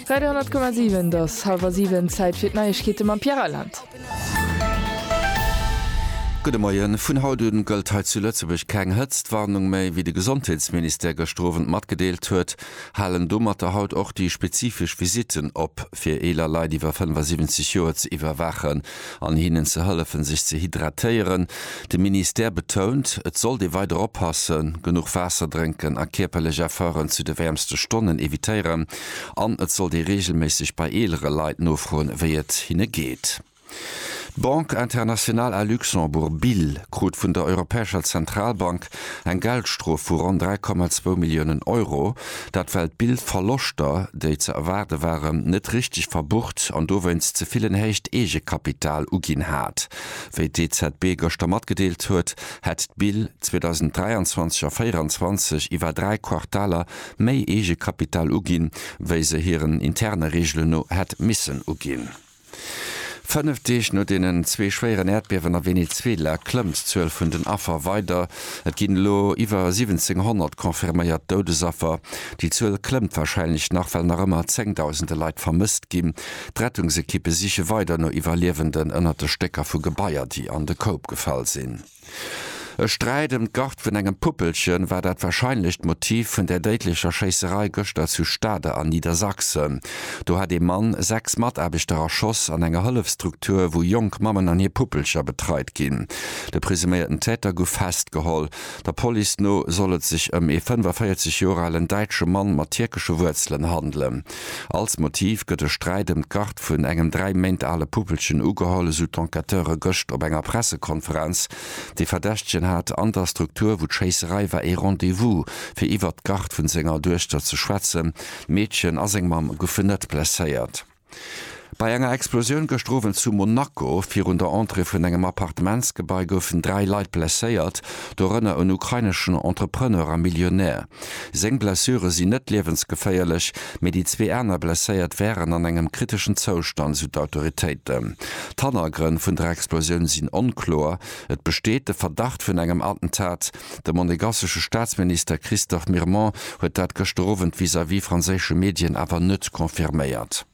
Radio 10,7 et ass halwer siwen, Zäit fir d'Neiegkeete mam Pierre Reyland. Gudde Moien, Vun haut un gëllt hei zu Lëtzebuerg keng Hëtztwarnung méi. Wéi de Gesondheetsministère gëschter Owend matgedeelt huet, halen domatter haut och déi spezifesch Visitten op, fir eeler Leit iwwer 75 Joer ze iwwerwaachen. an hinnen ze hëllefen, sech ze hydratéieren. De Ministère betount, et sollt ee weider oppassen, genuch Waasser drénken a kierperlech Efforten zu de wäermste Stonnen evitéieren an et sollt ee reegelméisseg bei eelere Leit nofroen, wéi et hinne geet. D'Banque Internationale à Luxembourg, BIL, krut vun der Europäescher Zentralbank Verlag eng Geldstrof vu ronn 3,2 Milliounen Euro. Dat well d'Bild-Verloschter, déi ze erwaarde waren, net richteg verbucht an dowéinst ze vill en héicht Eegekapital uginn hat. Wéi d'EZB gëschter matgedeelt huet, hätt d'Bild 2023 a 24 iwwer dräi Quartaler méi Eegekapital uginn, wéi se hiren interne Reegelen no hätt missen uginn. Fënnef Deeg no deenen zwee schwéieren Äerdbiewen a Venezuela klëmmt d'Zuel vun den Affer weider. Et ginn elo iwwer 1.700 confirméiert Doudesaffer. Déi Zuel klëmmt warscheinlech nach, well nach ëmmer zéngdausende Leit vermësst ginn. D'Rettungsekippe siche weider no Iwwerliewenden ënnert de Stécker vu Gebaier, déi an de Koup gefall sinn. E Sträit ëm d'Gard vun engem Puppelchen war dat wahrscheinlecht Motiv vun der déidlecher Schéisserei gëschter zu Stade an Niedersachsen. Do hat ee Mann sechs Mataarbechter erschoss an enger Hëllefstruktur, wou jonk Mammen an hir Puppelcher betreit ginn. De presuméierten Täter gouf festgeholl. Der Police no soll et sech ëm ee 45 Joer alen däitsche Mann mat tierkesche Wuerzelen handelen. Als Motiv gëtt e Sträit ëm d'Garde vun engem dräi Méint ale Puppelchen ugeholl, esou d'Enquêteure gëscht op enger Pressekonferenz. De Verdächtegen hat an der Struktur, wou d'Schéisserei war, ee Rendez-vous, fir iwwert d'Garde vun senger Duechter ze schwätzen. D'Meedchen a seng Mamm goufen net blesséiert. Bei enger Explosioun gëscht Owend zu Monaco virun der Entrée vun engem Appartementsgebai goufen dräi Leit blesséiert, dorënner en ukraineschen Entrepreneur a Millionär. Seng Blessure sinn net liewensgeféierlech, mee déi zwee aner Blesséiert wären an engem kriteschen Zoustand, sou d'Autoritéiten. D'Hannergrënn vun der Explosioun sinn onkloer, et besteet de Verdacht vun engem Attentat. De monegassesche Staatsminister Christophe Mirmont huet dat gëschter Owend vis-à-vis franséische Medien awer net confirméiert.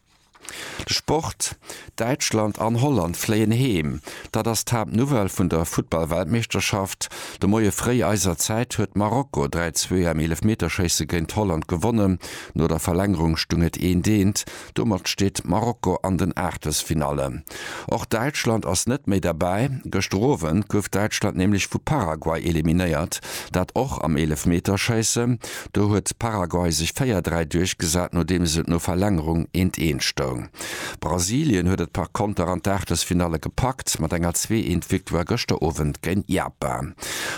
Sport, Däitschland an Holland fléien heem, dat ass d'Haaptnouvelle vun der Futtball-Weltmeeschterschaft. De Moie fréi eiser Zäit huet Marokko 3, 2 am Eelefmeterschéisse géint Holland gewonnen. No der Verlängerung stung et eent, eent. Domat steet Marokko an den Aachtelsfinallen. Och Däitschland ass net méi derbäi. Gëschter Owend gouf Däitschland nämlech vu Paraguay eliminéiert, dat och am Eelefmeterschéisse. Do huet Paraguay sech 4, 3 duerchgesat, nodeems et no Verlängerung 1, 1 stoung. Brasilien huet et par Konter an d'Aachtelsfinalle gepackt, mat enger 2, 1 Victoire gëschter Owend géint Japan.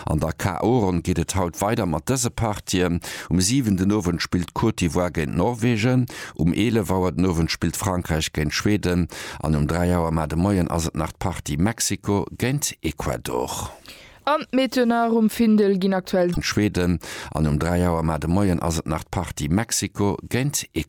An der KO-Ronn geet et haut weider mat dëse Partien. Um 7 den Owend spillt d'Côte d'Ivoire géint Norwegen, um 11 Auer den Owend spillt Frankräich géint Schweden an um 3 Auer mar de Moien ass et nach d'Partie Mexiko géint Ecuador. An d'Meteonar um Findel ginn aktuell. Schweden an um 3 Auer mar de Moien ass et nach d'Partie Mexiko géint Ecuador.